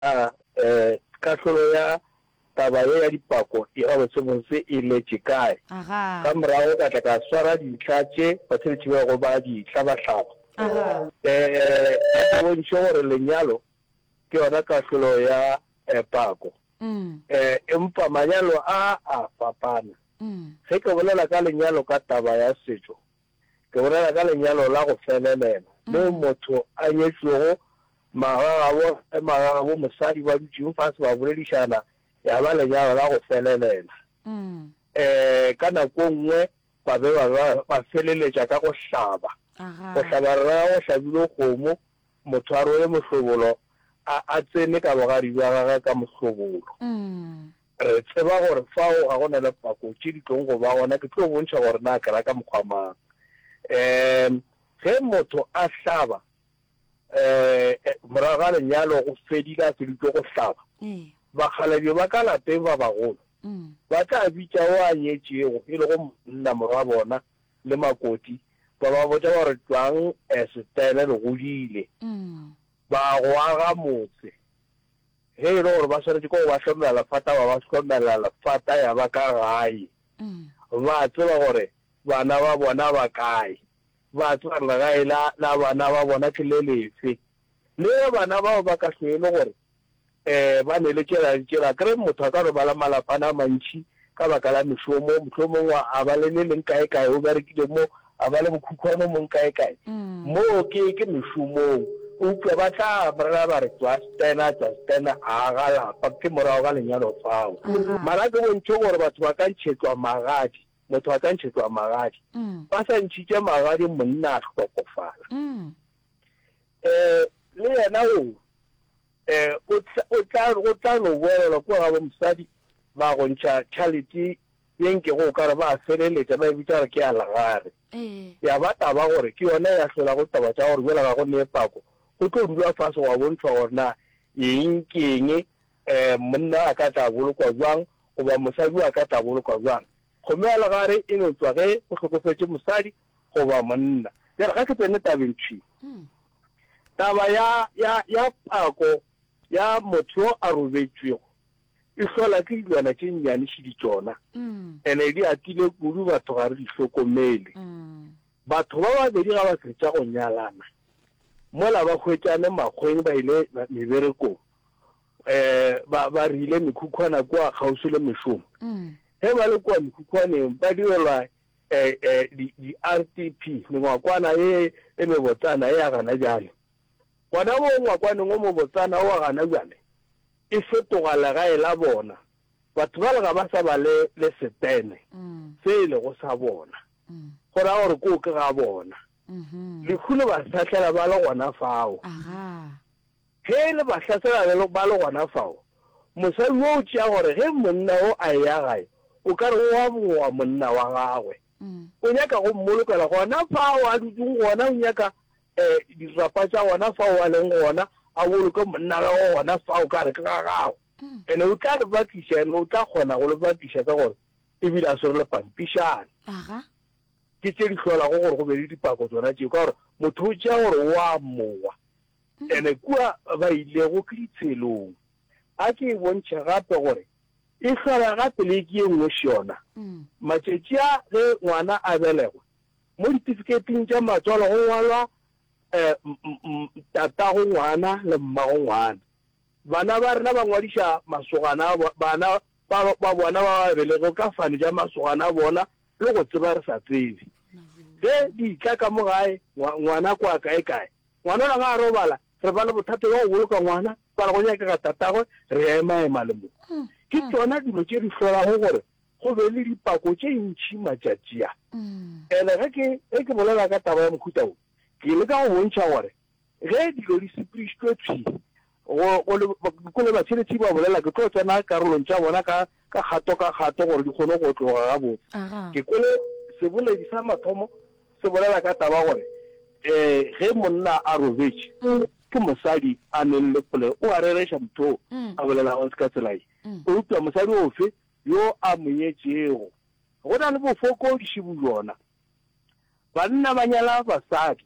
A E kahlolo ya taba ye ya dipako e gabotse-botse e letše kae? Ka morago ka tla ka swara dintlha tše basebetši bego ba di hlaba-hlaba. E A ke bontšhe gore lenyalo ke yona kahlolo ya pako. E Empa manyalo a a fapana. Ge ke bolela ka lenyalo ka taba ya setšo, Ke bolela ka lenyalo la go felelela, moo motho a nyetšwego magagabo le magagabo mosadi ba dutšego fase ba boledišana, ya ba lenyalo la go felelela. Ee, ka nako nngwe ba be ba ba ba feleletša ka go hlaba. Go hlaba re raya go hlabilwe kgomo, motho a rwele mohlobolo, a a tsene ka bogadi bja gagwe ka mohlobolo. Re tseba gore fao ga go na le pako tše di tlogo go ba gona, ke tlo bontšha gore na ke ra ka mokgwa mang. Um ge motho a hlaba, um morago ga lenyalo go fedile, a feditšwe go hlaba, bakgalabje ba ka lapeng ba bagolo ba tla bitša o a nyetšego, e lego monna, morwa bona le makoti, ba ba botša ba re, Tšwang, um setaele le godile, ba go aga motse, Ge e le gore ba swanetše ke go ba hlomela lefata, ba ba hlomela lefata ya ba ka gae. Ba a tseba gore bana ba bona ba kae. Ba a tseba gore legae la, la bana ba bona ke le lefe. Le ge bana bao ba ka hlwe e le gore um ba neletšela, neletšela, akere motho a ka robala malapana a mantši, ka baka la mešomo, mohlomong wa a ba le le leng kae kae o berekile mo, a ba le bokhukhwane mong kae kae. Moo ke ke mešomong. Eupša ba tla bolela ba re, Tswa Stena, tswa Stena, a ga lapa, ke morago ga lenyalo fao. Mara a ke bontšhe gore batho ba ka ntšhetšwa magadi, motho a ka ntšhetšwa magadi. Ba sa ntšhitše magadi monna a hlokofala. Ee, le yena o re, Ee, o tla, o tla, go tla no boelelwa kua gabo mosadi, ba go ntšha tšhalete ye nkego o ka re ba a feleletša ba e bitša gore ke ya lagare. Ya ba taba gore ke yona ya hlola go taba tša gore bjale ga go nee pako, go tlo dulwa fase gwa bontšhwa gore na eng ke eng, ee, monna a ka tla bolokwa bjang goba mosadi o a ka tla bolokwa bjang. Kgomo ya legare e no tšwa ge go hlokofetše mosadi goba monna. Bjale ga ke tsene tabeng thwi. Taba ya, ya, ya pako ya motho yo a robetšwego e hlola ke dilwana tše nnyane šidi tšona, ene di atile kudu, batho ga re di hlokomele. Batho ba babedi ga ba fetša go nyalana, mola ba hwetšane makgweng ba ile meberekong, um ba ba rile mekhukhwana kwa kgauswi le mešomo ge ba le kwa mekhukhwaneng ba direlwa um di-r t p mengwakwana e e mebotsana e ya gana jale gona mo ngwakwaneng o mobotsana wa gana jale e fetoga legae la bona batho ba lega ba sa ba le le setene mm. se e lego sa bona mm. go ra gore ko ke ga bona mm-hmm. lekhulo ba sahlela ba le gona fao Ge e le bahlasela le ba le gona fao, mosadi wo o tšea gore ge monna wo a eya gae, o ka re o a bogoa monna wa gagwe. O nyaka go mmolokela gona fao a dutšeng gona, o nyaka um dirapa tša gona fao a leng gona, a boloke monna wa gagwe gona fao ka gare ke ga gagwe. Ene o tla le bakiša, ene o tla kgona go le bakiša ka gore e bile a swere le pampišana. Ke tše di hlolago gore go be le dipako tsona tšeo, ka gore motho o tšea gore o a mmoa. Ntle kua ba ilego ke ditshelong. A ke e bontšhe gape gore e hlola gape le ke ye nngwe šona. Matšatši a ge ngwana a belegwa, mo ditifiketing tša matswalo go ngwalwa tatago ngwana le mmago ngwana. Bana ba rena ba ngwadiša masogana a bana ba ba bona ba ba belegego ka fane ja masogana a bona le go tseba re sa tsebe. Ge di tla ka mo gae, ngwana kwa kae-kae, Ngwanona ga a robala, re ba le bothata bja go boloka ngwana, ba re go nyakega tatagwe, re ya emaema le mo. Ke tšona dilo tše di hlolago gore go be le dipako tše ntši matšatši a. And ge ke, ge ke bolela ka taba ya mohuta wo, ke leka go bontšha gore ge dilo di sepedišitšwe thwi, Go, go le, go le batšheletšhi ba bolela, ke tlo tsena karolong tša bona ka, ka kgato ka kgato gore di kgone go otloga gabotse. Aha. Ke kwele seboledi sa mathomo se bolela ka taba ya gore, ee, ge monna a robetše, ke mosadi a nwelele kgole, o a rereša motho o a bolelago ka tsela ye. Eupša mosadi ofe yo a mo nyetšego? Go na le bofokodiši bjona. Banna ba nyala basadi.